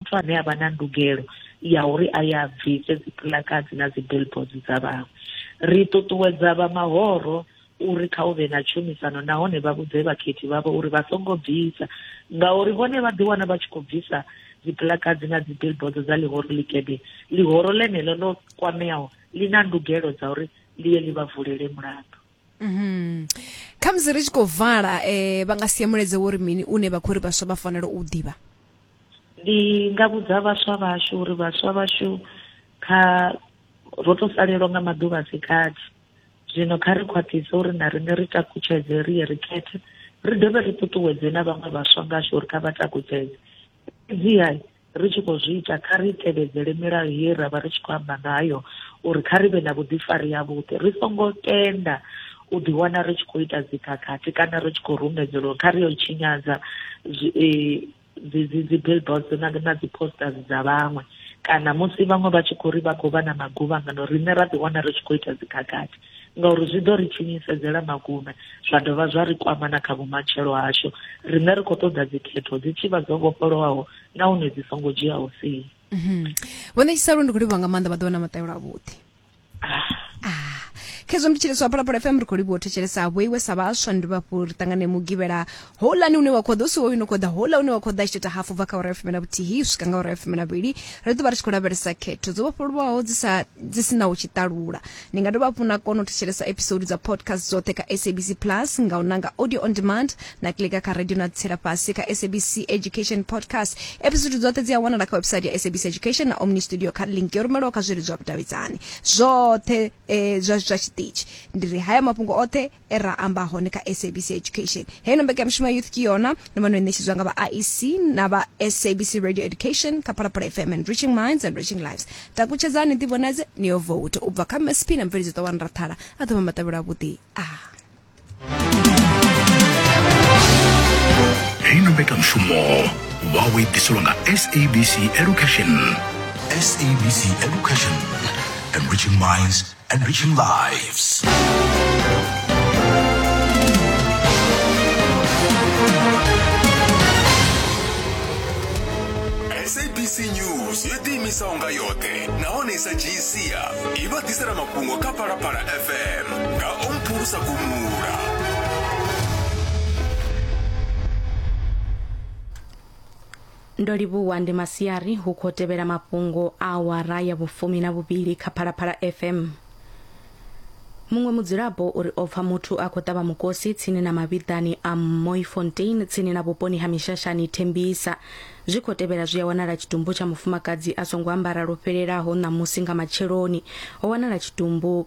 muthu ane a vha na ndugelo ya uri a ya bvise dzipuḽakadzi na dzibillboards dza vhaṅwe ri ṱuṱuwedza vha mahoro uri kha u vhe na tshumisano nahone vha vhudze vhakhethi vhavho uri vha songo bvisa ngauri vhone vha ḓiwana vha tshi khou bvisa dzipuḽakadzi na dzibillboards dza ḽihoro ḽikebe ḽihoro ḽeneḽo ḽo kwameaho ḽi na ndugelo dza uri ḽi ye ḽi vha vulele mulandu Mhm. Kha musi ri tshi khou vala eh vha nga sie mulaedza wo ri mini une vha khou ri vhaswa vha fanela u ḓivha. Ndi nga vhudza vhaswa vhashu uri vhaswa vhashu kha ro to salelwa nga maḓuvha a si gathi. Zwino kha ri khwaṱhise uri na riṋe ri takutshedze ri ye ri khethe ri dovhe ri ṱuṱuwedze na vhaṅwe vhaswa ngashu uri kha vha takutshedze. Fhedziha Ri tshi khou zwi ita, kha ri tevhedzele milayo ye ra vha ri tshi khou amba ngayo uri kha ri vhe na vhuḓifari havhuḓi. Ri songo tenda u ḓiwana ri tshi khou ita dzikhakhathi kana ri tshi khou rumedzelwa uri kha ri yo tshinyadza dzi-billboards na dzi-posters dza vhaṅwe kana musi vhaṅwe vha tshi khou ri vha khou vha na maguvhangano riṋe ra ḓiwana ri tshi khou ita dzikhakhathi. ngauri zwi ḓo ri tshinyisedzela magume zwa dovha zwa ri kwama na kha vhumatshelo hashu riṋe ri khou ṱoḓa dzikhetho dzi tshi vha dzo vhofholowaho nahone dzi songo dzhiaho sie mhm. vho ṋetshisa lwo ndi khou livhuwa nga maanḓa vha ḓo vha na maṱayelo avhuḓi ah. ah. khezwo ndi tshiliswa phalaphala fm ri khou livhuwa u thetshelesa vho iwe sa vhaswa ndi vhafhu ri ṱangane mugivhela houḽani une wa khou ḓa u si hoyu no khou ḓa houḽa une wa khou ḓa tshi ita hafu bva kha ora ya fumi na vhuthihi u swika nga ora ya fumi na vhili ri ḓo vha ri tshi khou lavhelesa khetho dzo vhofholowaho dzi sa dzi si na u tshi ṱalula ni nga dovha hafhu na kona u thetshelesa episode dza podcast dzoṱhe kha sabc plus nga u nanga audio on demand na klika kha radio na tsela fhasi kha sabc education podcast episode dzoṱhe dzi a wanala kha website ya sabc education na omni studio kha link yo rumelwaho kha zwileludzi zwa vhudavhidzani zwoṱhe eh, zwa zwa tshiṱitshi ndi ri haya mafhungo oṱhe e ra amba hone kha sabc education heino mbekanyamushumo ya youth ke yona no vha no ṋetshedzwa nga vha iec na vha sabc radio education kha phalaphala fm and reaching minds and reaching lives takutshedzani ḓivhonadze ni yo vote u bva kha msp na mveledzo ḓo wanra thala a ḓo vha matavhelo avhuḓi a heino mbekanyamushumo wawe i ḓiselwa nga sabc education sabc education enriching minds Enriching lives. sabc news yo ḓiimisaho nga yoṱhe nahone i sa dzhii sia i vha ḓisela mafhungo kha phalaphala fm nga o mphulusa gumula Ndo livhuwa ndi masiari hu khou tevhela mafhungo a awara ya vhufumi na vhuvhili kha Phalaphala FM. Muṅwe mudzulapo uri o pfa muthu a khou ṱavha mukosi tsini na mavhiḓani a Mooifontein tsini na vhuponi ha Mishashani Thembisa. Zwi khou tevhela zwi a wanala tshitumbu tsha mufumakadzi a songo ambara lwo fhelelaho ṋamusi nga matsheloni. Ho wanala tshitumbu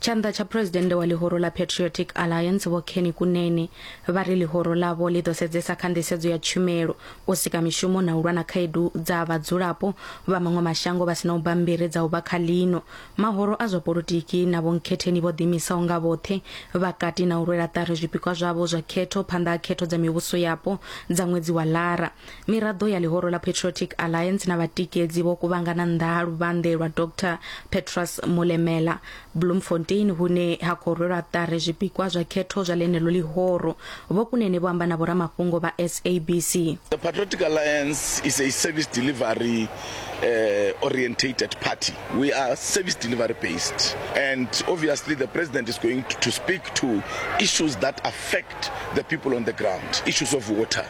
Tshanḓa tsha phresidennde wa ḽihoro ḽa Patriotic Alliance Vho Kenny Kunene vha ri ḽihoro ḽavho ḽi ḓo sedzesa kha nḓisedzo ya tshumelo, u sika mishumo na u lwa na khaedu dza vhadzulapo vha maṅwe mashango vha si na u bammbiri dza u vha kha ḽino. Mahoro a zwa polotiki na vhonkhetheni vho ḓiimisaho nga vhoṱhe vha kati na u rwela ṱari zwipikwa zwavho zwa khetho phanḓa ha khetho dza mivhuso yapo dza ṅwedzi wa Lara. Miraḓo ya ḽihoro ḽa Patriotic Alliance na vhatikedzi vho kuvhangana nnḓa ha luvhanḓe lwa Dr Petrus Molemela Bloemfontein hune ha khou rwelwa ṱari zwipikwa zwa khetho zwa ḽeneḽo ḽihoro. Vho Kunene vho amba na vhoramafhungo vha SABC. The Patriotic Alliance is a service delivery uh, orientated party. We are service delivery based. And obviously, the president is going to, to speak to issues that affect the people on the ground issues of water,